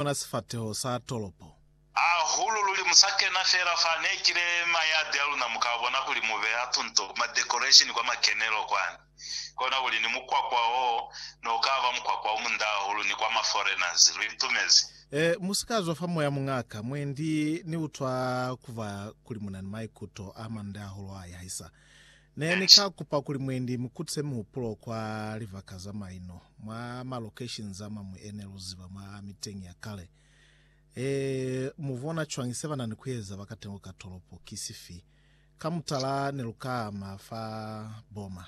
ona sifateho sa tolopo. Hahulu luli mu sa kena fela fa ne kile ma yadi a luna mu ka bona kuli mu beha tunto ku ma decoration kwa makenelo kwani. Kona kuli ni mukwakwa o ne u ka ba mukwakwa o munda hahulu ni kwa ma foreigners. Lu itumezi. Eh, mu si ka zwa fa moya muñaka. Mwendi ni utwa ku ba kuli mu na ni maikuto a mande hahulu a yahisa. Ne ni ka kupa kuli mwendi mu kutise mihupulo kwa libaka za maino, mwa malocation za mañwi e ne lu ziba mwa miteñi ya kale. Ee, mu bona cwañi se ba na ni ku eza ba katengo ka tolopo ki sifi? Ka mutala ne lu ka ama fa Burma,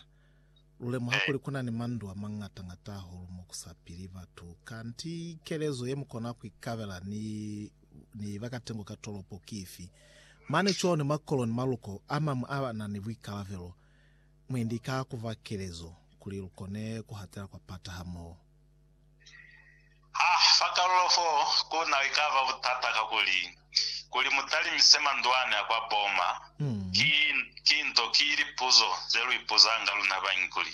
lu lemuha kuli ku na ni mandu a mañata-ñata hahulu mo ku sa pili batu. Kanti kelezo ye mu kona ku ikabela ni ni ba ka tengo ka tolopo ki ifi? Mane cwani mwa kolo ni maluko a mañwi a na ni buikalabelo? Mwendi ka ku fa kelezo kuli lu kone ku hatela kwa pata hamoho. Ha fa kalulo fo ku na li ka ba butata kakuli kuli mu talimise mandwani a kwa Boma. Ki, ki nto, ki lipuzo ze lu ipuzanga luna bañi kuli,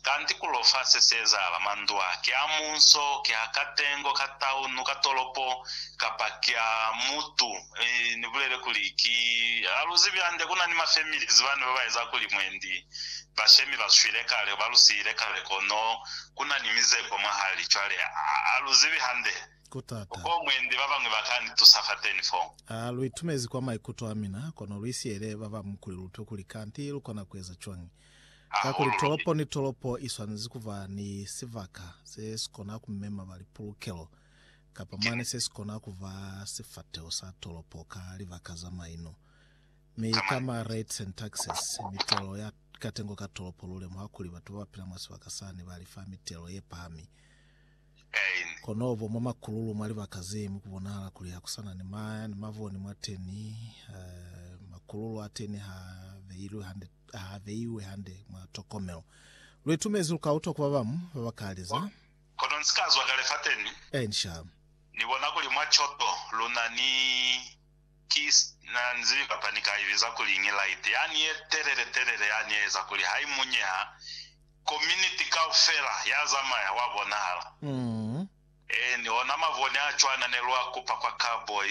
Kanti ku lo fa se se ezahala? Mandu a, ki a munso, ki a katengo ka taunu, ka tolopo, kapa ki a mutu? E, Ni bulele kuli, ki, ha lu zibi hande, ku na ni ma families bani ba ba eza kuli mwendi ba shemi ba swile kale, ba lu siyile kale, kono ku na ni mizeko mwahali. Cwale, ha lu zibi hande. Ku tata. Ko mwendi ba bañwi ba ka ni tusa fateni fo. A lu itumezi kwa maikuto a mina, kono lu isiele ba bañwi kuli lu utwe kuli kanti lu kona ku eza cwañi. Kakuli tolopo ni tolopo i swanezi ku ba ni sibaka se si kona ku mema ba lipulukelo kapa mane se si kona ku ba sifateho sa tolopo ka libaka za maino. Mi ka ma rate and taxes, mitelo ya katengo ka tolopo, lu lemuha kuli batu ba ba pila mwa sibaka sani ba lifa mitelo ye pahami. Spain. Konobo mwa makululu mwa libaka ze mu kubonahala kuli ha ku sa na ni maya ni mavoni mwateni, makululu ateni ha beilwe hande, ha beiwe hande mwa tokomelo. Lu itumezi lu ka utwa ku ba bamu ba ba ka liza. Kono ni si ka zwa kale fateni. Inca. Ni bona kuli mwa coto lu na ni ki na ni zibi kapa ni ka i biza kuli ngi light yani ye telele telele yani ye eza kuli ha i munyeha Kominiti kaufela ya zamaya wa bonahala. Eeni, ona mavone a cwana ne lwa kupa kwa Cowboy,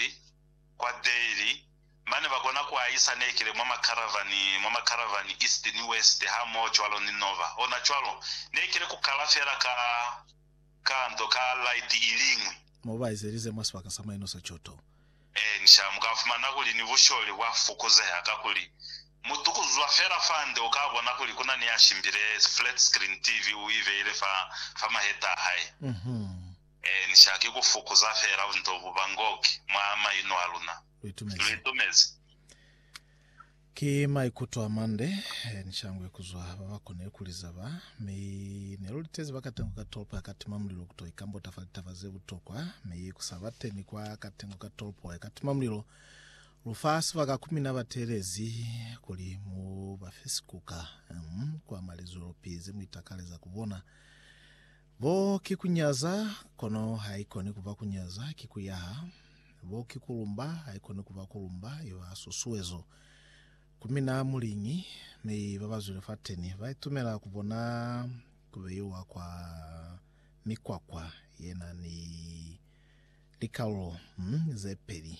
kwa Daly, mane ba kona ku ahisa nekele mwa makaravani, mwa makaravani east ni west hamoho cwalo ni Nova. Ona cwalo, nekele ku kala fela ka, ka nto, ka laiti iliñwi. Mo ba ezelize mwa sibaka sa maino sa coto. Eeni, sha, mu ka fumana kuli ni busholi bwa fukuzeha kakuli Mutu kuzwa fela fande uka bona kuli kuna ni ya shimbile flat screen TV u ibeile fa fa maheta a hae. Ee, ni shaki ku fukuza fela bunto bu ba ngoki mwa maino a luna. Lu itumezi. Ki maikuto a mande ni shangwe kuzwa ba ba konile ku liza ba, mi ne lu litezi ba katengo ka tolopo ya katima mulilo kuto ikambota fa litaba ze butokwa, mi ku sa bateni kwa katengo ka tolopo ya katima mulilo Lu fa sibaka ku mina batelezi kuli mu ba fe sikuka, um, kwa mwa lizoolopi ze mu itakaleza ku bona. Bo ki ku nyaza, kono haikoni ku ba ku nyaza, ki ku yaha. Bo ki ku lumba, haikoni ku ba ku lumba, i ba susuezo. Ku mina muliñi, mi ba ba zwile fateni ba itumela ku bona ku beiwa kwa mikwakwa ye na ni likalulo, um, ze peli.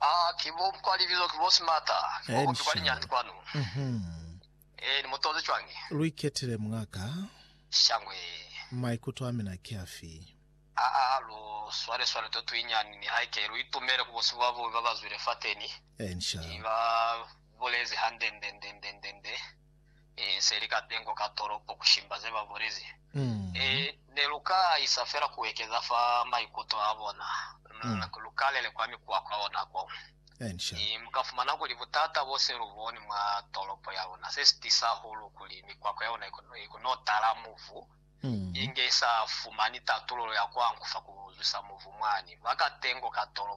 Aa, ki bo kwa libilo, ki bo Smarter, ki bo kopi kwa linyani kwanu. Ee, ni mu toze cwañi? Lu iketile, mungaka. Shangwe. Maikuto a mina ki afi? Aa, lu swale swale to tuinyani, nihaike lu itumele ku bo sibo ba bubi ba ba zwile fateni. Ki ba bulezi hande nde, nde, nde, nde, nde. se li ka pengo ka tolopo ku shimba ze ba bulezi. Ne lu ka isa fela ku ekeza fa maikuto a bona. Lu ka lele kwa mikuwa kwa lona ko. Mu ka fumana kuli butata bo se lu boni mwa tolopo ya luna se si tisa hahulu kuli mikwakwa ya luna i kono tala mubu, inge i sa fumani tatululo ya ku ankufa ku zwisa mubu mwani mwa ka pengo ka tolopo.